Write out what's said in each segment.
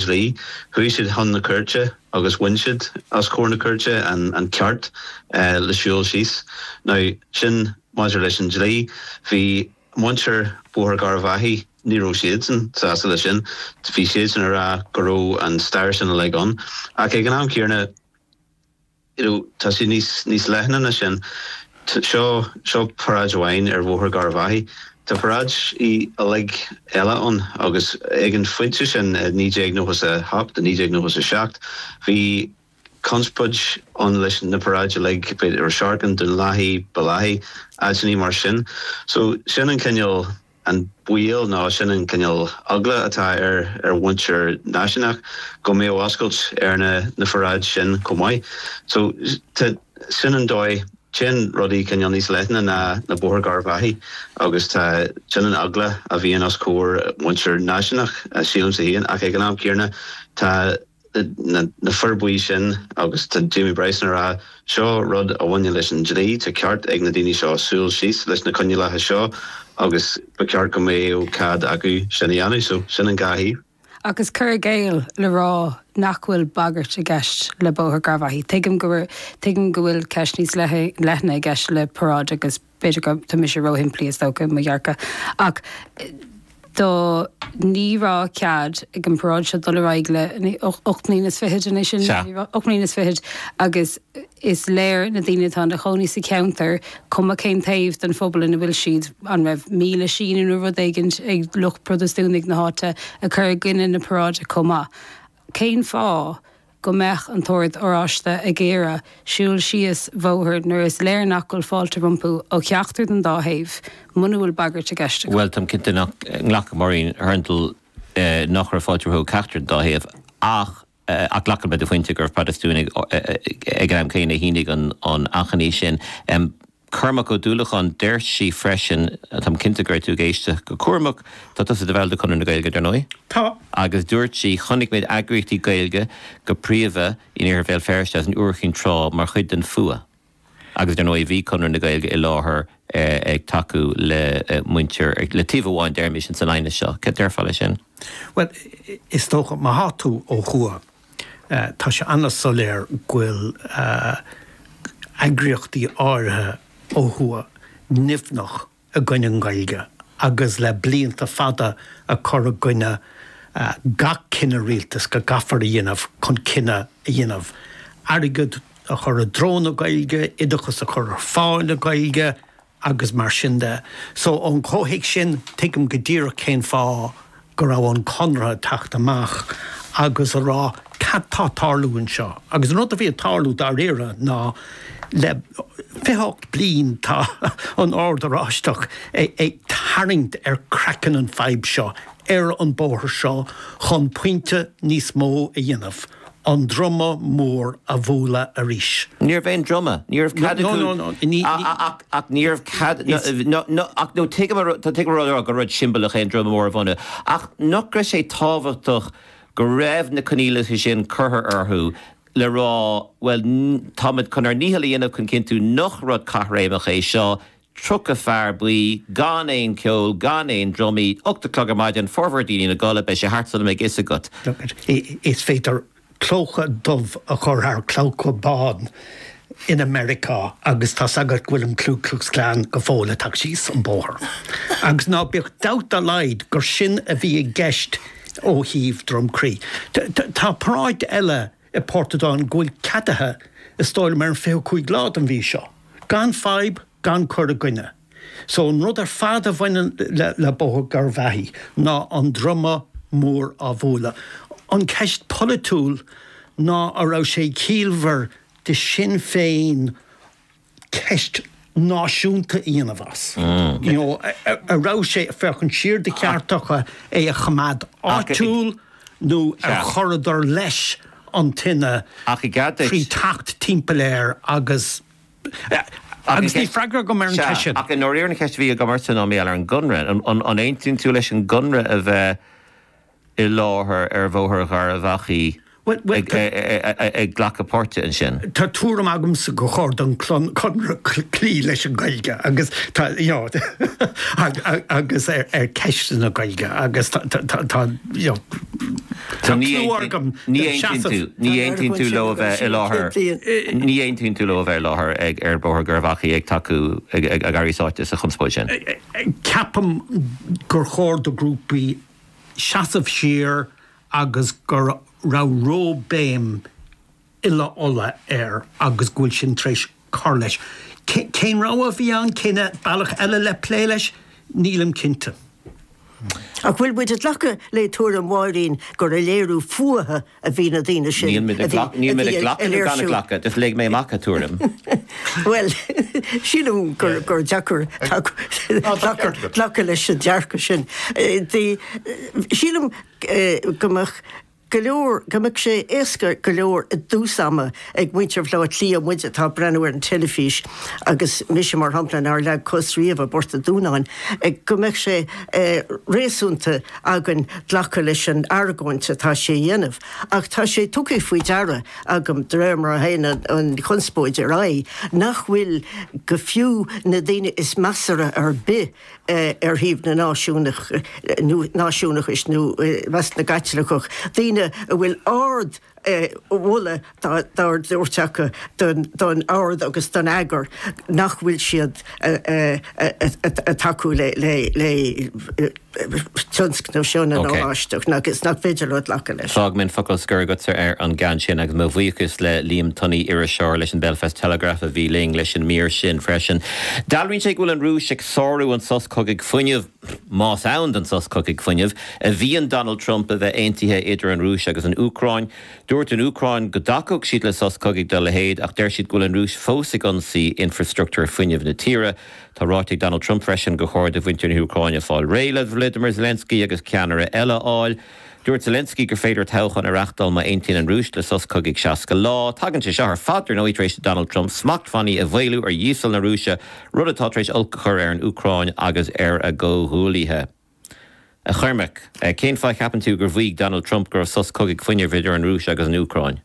dlí. Chuaigh siad chun na cúirte agus bhain siad os comhair na cúirte an ceart le siúl síos. Now, sin maidir leis an dlí. Bhí muintir Bhóthar Gharbhachaidh, ní raibh siadsan sásta le sin. Bhí siadsan ag rá go raibh an stair sin uilig ann. Ach ag an am céanna. you know tá sé níos níos leithne ná sin. So seo paráid amháin ar Bhóthar Gharbhachaidh. Tá paráidí uilig eile ann agus ag an phointe sin i naoi déag nócha a hocht, i naoi déag nócha a seacht, bhí conspóid ann leis na paráidí uilig, b'fhéidir Ros Earcáin, Dún Lathaí, Baile Eachaidh, áiteannaí mar sin. So sin an cineál. an baol nó sin an cineál eagla atá ar ar mhuintir náisiúnach go mbeadh oscailt ar na paráidí sin chomh maith. So tá sin an dóigh téann rudaí cineál níos leithne ná Bóthar Gharbhachaidh agus tá sin an eagla a bhíonn os comhair muintir náisiúnach sílimse féin ach ag an am céanna tá na Fir Bhuí ansin agus tá Jamie Bryson ag rá, seo rud a bhaineann leis an dlí, tá ceart ag na daoine seo siúl síos leis na coinníollacha seo agus ba cheart go mbeadh cead acu sin a dhéanamh. So, sin an dhá thaobh. An cur i gcéill le rá nach bhfuil bagairt i gceist le Bóthar Gharbhachaidh. Tuigim, tuigim go bhfuil ceist níos leithne i gceist le paráid agus. B'fhéidir go, tá mise róshimplí is dócha i mo dhearcadh, ach do ní raibh cead ag an bparáid seo dul ar aghaidh le ocht mbliana is fichead an é sin, Sea. ocht mbliana is fichead agus is léir na daoine atá ina chónaí sa cheantar, cuma cén taobh den phobal ina bhfuil siad, an raibh míle síniú nó rud éigin ag lucht Protastúnaigh na háite ag cur i gcoinne na paráide chomh maith? Cén fáth go mbeadh an tOrd Oráiste ag iarraidh siúl síos bhóthar nuair is léir nach bhfuil fáilte rompu ó cheachtar den dá thaobh, muna bhfuil bagairt i gceist acu. Bhuel, táim cinnte nach nglacfadh muintir an Oird nach raibh fáilte rompu ó cheachtar den dá thaobh, ach ach glacaim le do phointe go raibh Protastúnaigh ag an am céanna a shínigh an achainí sin. Cormac Ó Dúlacháin, Deir sí freisin, táim cinnte go raibh tú ag éisteacht go cúramach, tá tusa i do bhall de Chonradh na Gaeilge, dar ndóigh? Tá. Agus dúirt sí, Chonaic mé eagraíochtaí Gaeilge, go príomha in iarthar Bhéal Feirste agus in Iúr Chinn Trá, mar chuid den fhuath. Agus dar ndóigh, bhí Conradh na Gaeilge i láthair ag tacú le muintir, le taobh amháin deirimís, an san aighneas seo. Céard a déarfá leis sin? Bhuel, is dócha, má tá tú ó thuaidh. Tá sé an-soiléir go bhfuil eagraíochtaí áirithe ó thuaidh nimhneach i gcoinne an Gaeilge agus le blianta fada ag cur i gcoinne gach cinneadh rialtais go gcaithfear a dhéanamh chun cinneadh a dhéanamh airgead a chur i dtreo na Gaeilge, oideachas a chur ar fáil i Gaeilge. agus mar sin de. So ón chomhthéacs sin, tuigim go díreach cén fáth go raibh an Conradh ag teacht amach agus a rá cad tá ag tarlú anseo. Agus an rud a bhí ag tarlú dáiríre ná le fiche ocht bliain tá an Ord Oráisteach ag tarraingt ar craiceann an fhadhb seo ar an bóthar seo chun pointe níos mó a dhéanamh. an droma mór a bhualadh arís. Ní raibh aon droma, ní raibh cead acu ach, ach ní raibh cead, ach nó tuigim, tuigim a raibh orthu, gur rud siombalach é an droma mór a bhualadh, ach nach raibh sé tábhachtach go raibh na coinníollacha sin curtha orthu le rá, bhuel, táimid chun ár ndícheall a dhéanamh chun cinntiú nach rud caithréimeach é seo, 30 fear buí, gan aon ceol, gan aon dromaí, ocht a clog ar maidin, formhór daoine ina gcodladh, beidh sé thart sula mbeidh fhios agat. Is féidir clóca dubh a chur thar clóca bán in Americá agus tá a fhios agat go bhfuil an Klu Klux Klan go fóill ag teacht síos an bóthar. Agus ná bíodh dabht dá laghad gur sin a bhí i gceist ó thaobh Dhroim Crí. Tá paráid eile. i bPortadown go bhfuil ceadaithe, is dóigh liom ar an 25 lá den mhí seo, gan fadhb gan cur i gcoinne. So an rud ar fad a bhaineann le Bóthar Gharbh Achaidh ná an droma mór á bhualadh. An ceist polaitiúil ná a raibh sé ciallmhar de Sinn Féin, ceist náisiúnta a dhéanamh as. You know, a raibh sé ag féachaint siar de cheart acu é a choimeád áitiúil nó ar chuireadar leis an tine trí theacht timpeall air agus Agus níl freagra agam ar an cheist sin. Ach i ndáiríre an cheist a bhí agamsa ná maidir leis an gConradh. An aontaíonn tú leis an gConradh a bheith i láthair ar Bhóthar Gharbh Achaidh ag glacadh páirte ansin. Tá tuairim agamsa gur chóir don Chonradh cloí leis an Ghaeilge agus tá you know agus ar ceisteanna Gaeilge agus tá tá you know tá cúl agam ní aontaíonn tú leo a bheith i láthair ní aontaíonn tú leo a bheith i láthair ar Bhóthar Gharbh Achaidh ag tacú ag éirí sáite sa chonspóid sin. Ceapaim gur chóir do ghrúpaí seasamh siar agus go raibh róbhéim uile-oileáin air agus go bhfuil sin tar éis cur leis. Cén rogha a bhí ann? Cén bealach eile le plé leis? Nílim cinnte. Ach bhfuil muid ag glacadh le tuairim Mháirín gur léiriú fuatha a bhí na daoine sin a bhí ag léirsiú. Níl mé ag glacadh nó gan ag glacadh, just léigh mé amach a tuairim. Bhuel, sílim gur deacair glacadh leis an dearcadh sin. Sílim go mbeadh go leor, go mbeadh sé éasca go leor i dtús ama Ag muintir Bhaile Átha Cliath muid atá ag breathnú ar an teilifís agus mise, mar shampla, nár leag cos riamh i bPort an Dúnáin, go mbeadh sé réasúnta againn glacadh leis an argóint atá sé a dhéanamh. Ach tá sé tugtha faoi deara agam, de réir mar a théann an chonspóid ar aghaidh, nach bhfuil go fiú na daoine is measartha ar bith ar thaobh na náisiúnach, nó náisiúnachais, nó i measc na gCaitliceach, daoine a bhfuil ard, mholadh dá thabhairt acu don Ord agus don eagar, nach bhfuil siad ag tacú le tionscnamh seo na nOráisteach agus nach féidir leo glacadh leis. Fágaim an focal scoir agatsa ar an gceann sin agus mo bhuíochas le Liam Tunney, iriseoir leis an Belfast Telegraph a bhí linn leis an mír sin freisin. Dealraíonn sé go bhfuil an Rúis ag sárú an sos cogaidh fuinnimh. Más ann don sos cogaidh fuinnimh a mhaíonn Donald Trump a bheith aontaithe idir an Rúis agus an Úcráin, dúirt an Úcráin go dtacódh siad le sos cogaidh dá leithéid ach deir siad go bhfuil an Rúis fós ag ionsaí infreastruchtúr fuinnimh na tíre. Tá ráite ag Donald Trump freisin gur chóir do mhuintir na hÚcráine fáil réidh le Volodymyr Zelensky agus ceannaire eile a fháil. Dúirt Zelensky gur féidir toghchán a reachtáil má aontaíonn an Rúis le sos cogaidh 60 lá. Tagann sé seo ar fad, ar ndóigh, tar éis do Donald Trump smachtbhannaí a mhaolú ar dhíosal na Rúise, rud atá tar éis olc a chur ar an Úcráin agus ar a gcomhghuaillithe. A Chormaic, cén fáth a gceapann tú gur mhaígh Donald Trump go raibh sos cogaidh fuinnimh idir an Rúis agus an Úcráin?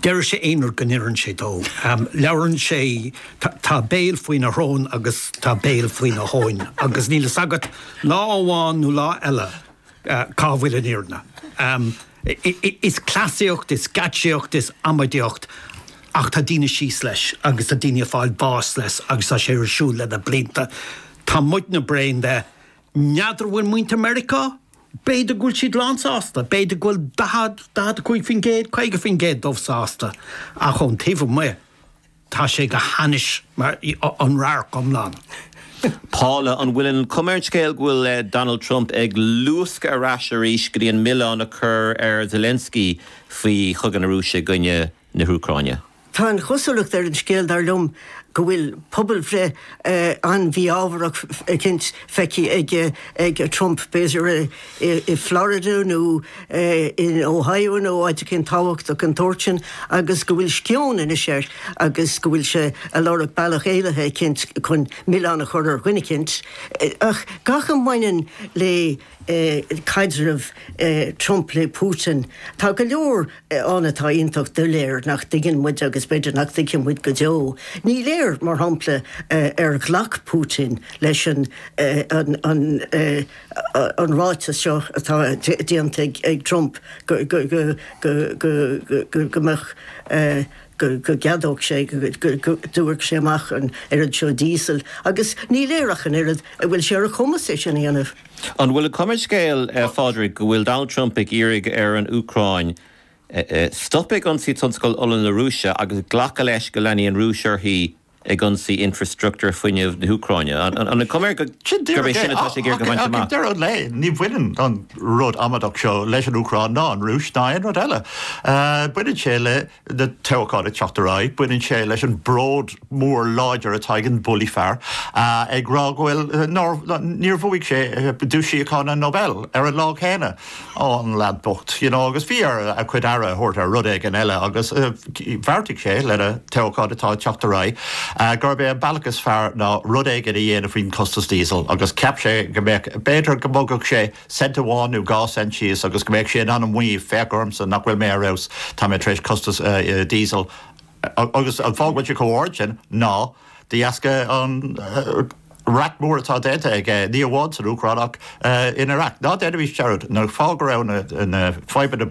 Deir sé aon rud go n-oireann sé dó. Labhrann sé, tá béal faoina shrón agus tá béal faoina thóin agus níl a fhios agat lá amháin nó lá eile cá bhfuil an fhírinne. Is cleasaíocht, is geáitsíocht, is amaideacht ach tá daoine síos leis agus tá daoine ag fáil bás leis agus tá sé ar siúl leis na blianta. Tá muidne bréan de N'fheadar an bhfuil muintir Meiriceá? B'fhéidir go bhfuil siad lán sásta, b'fhéidir go bhfuil 40, 45%, 50% díobh sásta, ach ón taobh amuigh, tá sé go hainnis, an radharc iomlán. Paula, an bhfuil an chuma ar an scéal go bhfuil Donald Trump ag luascadh ar ais arís go dtí an milleán a chur ar Zelensky faoi chogadh na Rúise i gcoinne na hÚcráine? Tá an chosúlacht ar an scéal, dar liom, go bhfuil pobalbhreith an-mhí-ámharach eicínt feicthe ag Trump, b'fhéidir i Florida nó in Ohio nó áit eicínt tábhachtach den tsórt sin, agus go bhfuil sceoin anois air agus go bhfuil sé ag lorg bealach éalaithe eicínt chun milleán a chur ar dhuine eicínt. Ach gach a mbaineann le. caidreamh Trump le Putin. Tá go leor ann atá iontach doiléir nach dtuigeann muid agus b'fhéidir nach dtuigfidh muid go deo. Ní léir, mar shampla, ar ghlac Putin leis an ráiteas seo atá déanta ag Trump go mbeadh. go gceadódh sé go dtabharfadh sé amach an oiread seo díosail agus ní léir ach an oiread an bhfuil sé ar a chumas é sin a dhéanamh. An bhfuil an chuma ar an scéal, a Phádraig, go bhfuil Donald Trump ag iarraidh ar an Úcráin stop ag ionsaí tionscal ola na Rúise agus glacadh leis go leanfaidh an Rúis uirthi ag ionsaí infreastruchtúr fuinnimh na hÚcráine. An chuma air go, gurb é sin atá sé ag iarraidh a bhaint amach? Sin díreach é. Ach ag deireadh an lae, ní bhaineann an rud amaideach seo leis an Úcráin ná an Rúis ná aon rud eile. Baineann sé le na toghcháin ag teacht ar aghaidh, baineann sé leis an bród mór láidir atá ag an bully fear ag rá go bhfuil, nár, níor bhuaigh sé duais síochána Nobel ar an lá céanna. Ó, an leaid bocht, you know, agus bhí air a chuid aire a thabhairt ar rud éigin eile agus bheartaigh sé, le na toghcháin atá ag teacht ar aghaidh, gurb é an bealach is fearr ná rud éigin a dhéanamh faoin chostas díosail agus cheap sé go mbeadh, b'fhéidir go mbogfadh sé cent amháin nó dhá cent síos agus go mbeadh sé in ann a mhaíomh, féach ormsa nach bhfuil mé ar fheabhas, tá mé tar éis costas díosail, agus an fáth go bhfuil sé chomh hard sin ná, De dheasca an raic mhór atá déanta aige, ní hamháin san Úcráin ach in Iraq, ná déanaimis dearúd, an fáth go raibh na fadhbanna.